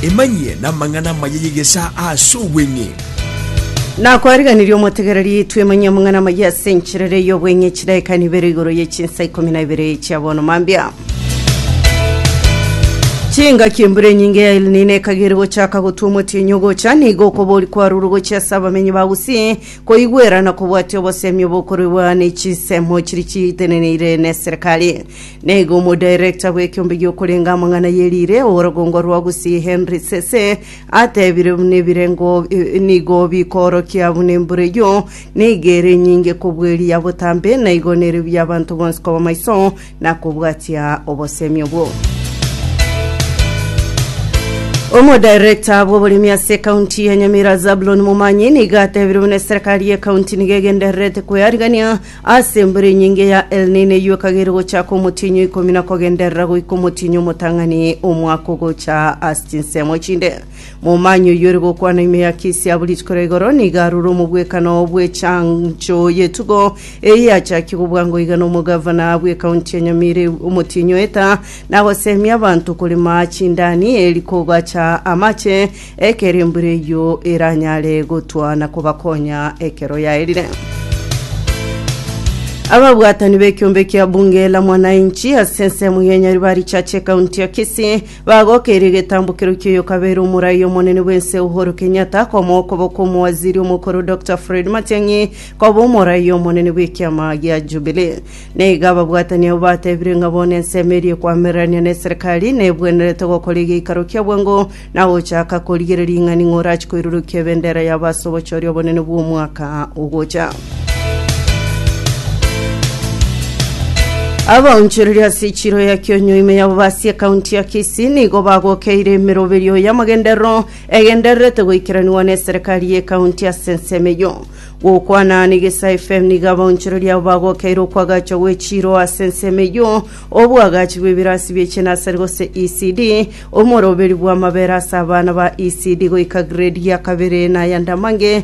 Emanyie namang'ana amaya y'egesaa ase obweng'e. Nakwariganirie omotegereri twemanyia amang'ana amaya ase encherere y'obweng'e chidaeka nibere igoro ye chinsa ikomi na ibere chia bono mambia chingaki embura enyinge ya El Nino ekagere gochaka gotwa omotienyi ogocha nigo okobori kwarure gochia ase abamenyi ba Gusii Koigwerana kobwate obosemi obokoruegwa ne chinsemo chiria chiiteneneire neserikali. Naigo omodirector bw'ekiombe gi'okorenga amang'ana ye riire orogongo rwa Gusii Henry Sese atebire buna ebirengo eh, nigo bikoorokia buna embura eyio nigo ere enyinge kobua eria botambe, naigo nere bi'abanto bonsi koba maiso na kobwatia obosemi obwo. Omodirector bw'oboremi ase ekaunti ya Nyamira Zabulon Momanyi nigo atebire buna eserikari y'ekaunti nigo egendererete kwearigania ase embura enyinge ya El Nino eyio ekagere gochaka omotienyi o ikomi na kogenderera goika omotienyi omotang'ani omwaka ogocha ase chinsemo chinde. Momanya oyoire gokwana ime ya kesi ya buri rituko ria igoro nigo arure omogwekano bw'echancho y'etugo eye yachakia gobwangwa iga n'omogavana bw'ekaunti ya Nyamira omotienyi oeta nagosemia abanto korema chindani eri kogacha amache ekero embura eyio eranyare gotwa na kobakonya ekero yaerire. Ababwatani b'ekiombe kia bunge la mwananchi ase ensemo y'enyaribari chache ekaunti ya Kisii Bagokeirie egetambokero kia oyokabeire omorai omonene bw'ense Uhuru Kenyatta komoa okoboko omowaziri omokoro Dokita Fred Matiang'i koba omorai omonene bw'ekiama gia Jubilee. Na iga ababwatani abwo batebire ng'a bono ensemo eria ekwamererania ne serikali nebwenerete gokora egeikaro kia bwango na gochaka korigereria ing'ani ng'a orachie koirurukia ebendera yabo ase obochoria obonene bw'omwaka ogocha. Abaonchoreria ase echiro ya kionyo ime ya Bobasi ekaunti ya Kisii nigo bagokeire emeroberio y'amagenderero egendererete goikeranigwa n'eserekari y'ekaunti ase ensemo eyio. Gokwana n'Egesae FM nigo abaonchoreria abo bagokeire okwagachwa gw'echiro ase ensemo eyio, obwagachi bw'ebirasi bie chinasari gose ECD, omoroberi bw'amabera ase abana ba ECD goika grade ya kabere na ya Ndamange,